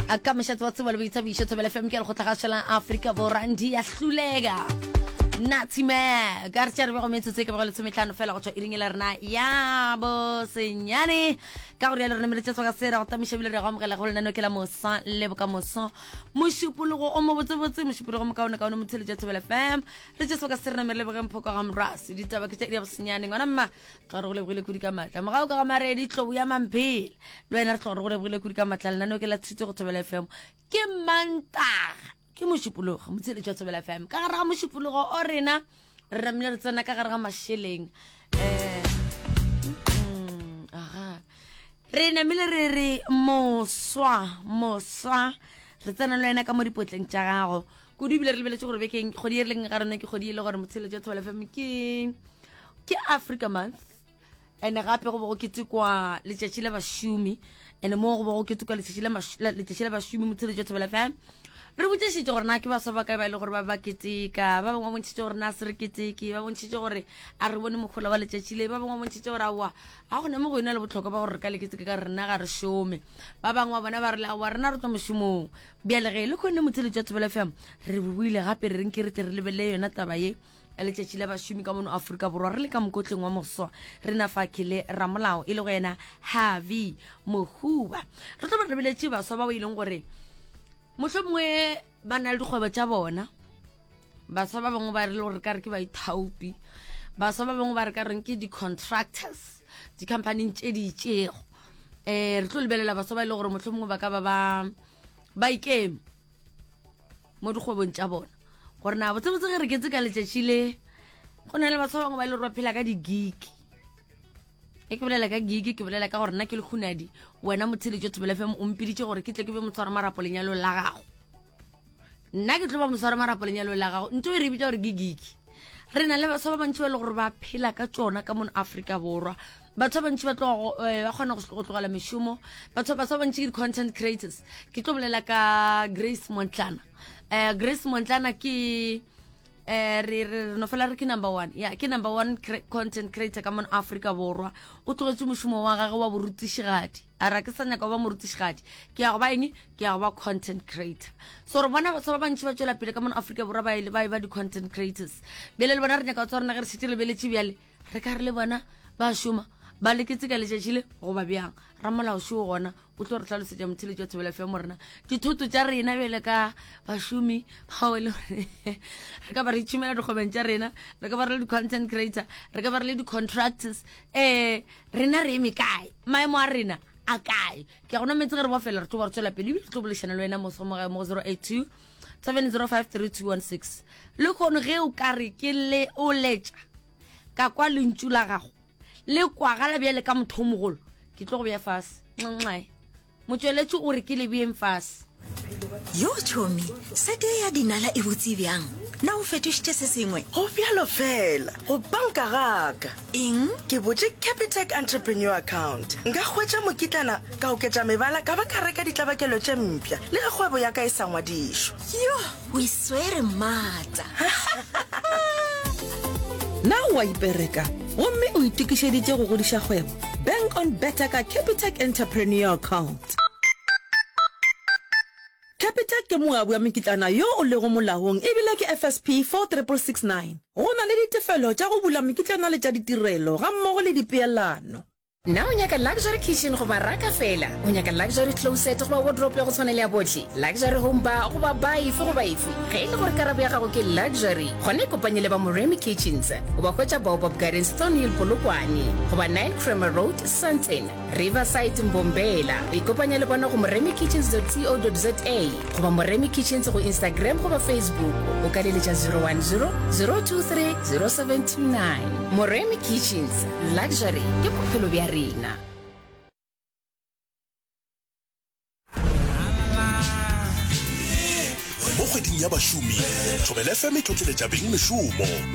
a ka mešatse wa tseba le boithabišo thobele fm ke lekgotla gašelang afrika borandi ya hlulega natsime ka re tša re bego metsotso e ke bego lesometlhano fela go tšwa e ringela rena ya bosenyane ka gore ya le rona meletša tsoga se ra go tamiša bile re go amogela go lenano ke la mosa le bokamoso mošupologo o mo botsebotse mošupologo mokaonekaone motheletša thobele fm re tša soka se rena mere lebogeng phoko ga morase ditaba ke tša di ya bosenyane ngwana mma tlo re go lebogile kudi ka matla mogago ka ga maredi tlobo ya mamphela le wena re tlo re go lebogile kudi ka matla lenaneo ke la tshitse go thobela fm ke mantaga ke mošupologo motsheletši wa thobela fm ka gare ga mošupologo o rena re ramile re tsena ka gare ga mašeleng um aga re namile re re moswa moswa re tsena le wena ka mo dipotleng tša gago kudu ebile re lebeletse gore bekeng kgodi e re leng ga rona ke kgodi e le gore motsheletso ya thobela fm ke ke africa month and gape go bo go ketekwa letšatši la bašomi and moo go bo go ketekwa letšatši la bašomi motsheletso ya thobela fm re botsešitše gore na ke baswa ba kae ba e le gore ba ba keteka ba bangwe ba bontšhitše gore na se re keteke ba bontšhitše gore a re bone mokgola wa letšatši le ba bangwe ba bontšhitše gore aowa ga gone mo go yona le botlhokwa ba gore re ka le keteke ka rena ga re šome ba bangwe ba bona ba re le aowa rena re tswa mošomong bjale ge e le kgone motshele tša thobela fm re buile gape re renke re tle re lebelele yona taba ye letšatši la bašomi ka mono aforika borwa re le ka mokotleng wa moswa re na fa ke le ramolao e le go yena harvey mohuba re tlo ba rebeletše baswa bao e leng gore mohlomongwe ba na le dikgwebo tša bona baswa ba bangwe ba rile gore ka re ke baithaopi baswa ba bangwe ba re ka reng ke di-contractors di-companyng tše di itšego um eh, re tlo lebelela baswa ba e le gore motlho mongwe ba ka ba ba ba ikeme mo dikgwebong tša bona gore na botsebotse ge re ketse ka letšatši le go na le baswa ba bangwe ba e le gore ba phela ka digiki e ke bolela ka gigi ke bolela ka gore nna ke le khunadi wena motheletso thobela fm o mpiditše gore ke tle ke be motshwara marapo lenyalong la gago nna ke tlo ba moswara marapo lenyalo la gago nto e re bitsa gore ke giki re na le baswa ba bantši ba e le gore ba phela ka tsona ka mono aforika borwa batho ba bantši ba tlogo eh, ba kgona go tlogela mešomo batho baswa ba bantši ke di-content creators ke tlo bolela ka grace montlana um grace montlana ke eh re re no fela re ke number 1 ya ke number 1 content creator ka mon Africa borwa o tlogetse mošomo wa gagwe wa borutišigadi a ra ke sa nyaka go ba morutišigadi ke ya go ba eng ke ya go ba content creator so re bona batho ba bantšhi ba tšwela pele ka mona aforika borwa ba e ba di-content creators bele le bona re nyaka go tswa rena ge re šetse re beletše bjale re ka re le bona ba šoma ba leketse ka letšatši le goba bjang ramolao šoo gona o tlo re tlhalosetša motheletši wa thobela fm rena dithoto tša rena bjale ka bašomi bao e le gore re ka ba re tšhumela dikgobeng tša rena re ka ba re le di-content creator re ka ba re le di-contractors um Rena re eme kae? Maemo a rena a kae? Ke a go nametse ge re bofela re tlo ba re tswela pele ebile re tlo bolešana le wena moso mo gae mo go 082 7053216 le kgono ge o ka re ke le o letša ka kwa lentšu la gago le kwagala bjale ka mothomogolo ke tlo go bja fase nxae Motšweletši o re ke lebjeng fase. Yo tšhomi, sete ye ya dinala e botse bjang? Na o fetošitše se sengwe? Go bjalo fela, go banka gaka. Eng? Ke botše Capitec Entrepreneur Account. Nka hwetša mokitlana, ka oketša mebala, ka ba ka reka ditlabakelo tše mpša, le ge kgwebo ya ka e sa ngwadišwa. Yoh! o e swere maatla na o a ipereka gomme o itokišeditše go godiša kgwebo bank on better ka capitec entrepreneur account capitec ke moabi wa mekitlana yo o lego molaong ebile ke fsp 46669 go na le ditefelo tša go bula mekitlana le tša ditirelo gammogo le dipeelano Na o nyaka luxury kitchen goba raka fela? O nyaka luxury closet goba wardrope ya go tshwana le ya bohle? Luxury home bar goba bar efe goba efe? Ge e le gore karabo ya gago ke luxury, gona ikopanye le ba Moremi Kitchens. O ba hwetša Baobab Gardens, Thornhill, Polokwane, goba 9 Kramer Road, Sandton, Riverside, Mbombela. Ikopanye le bona go moremikitchens.co.za. goba moremi kitchens go instagram goba facebook o ka leletša 010 023 079 moremi kitchens luxury ke bophelo bja rena mo kgweding ya bašomi thobele fm e tlotleletša beng mešomo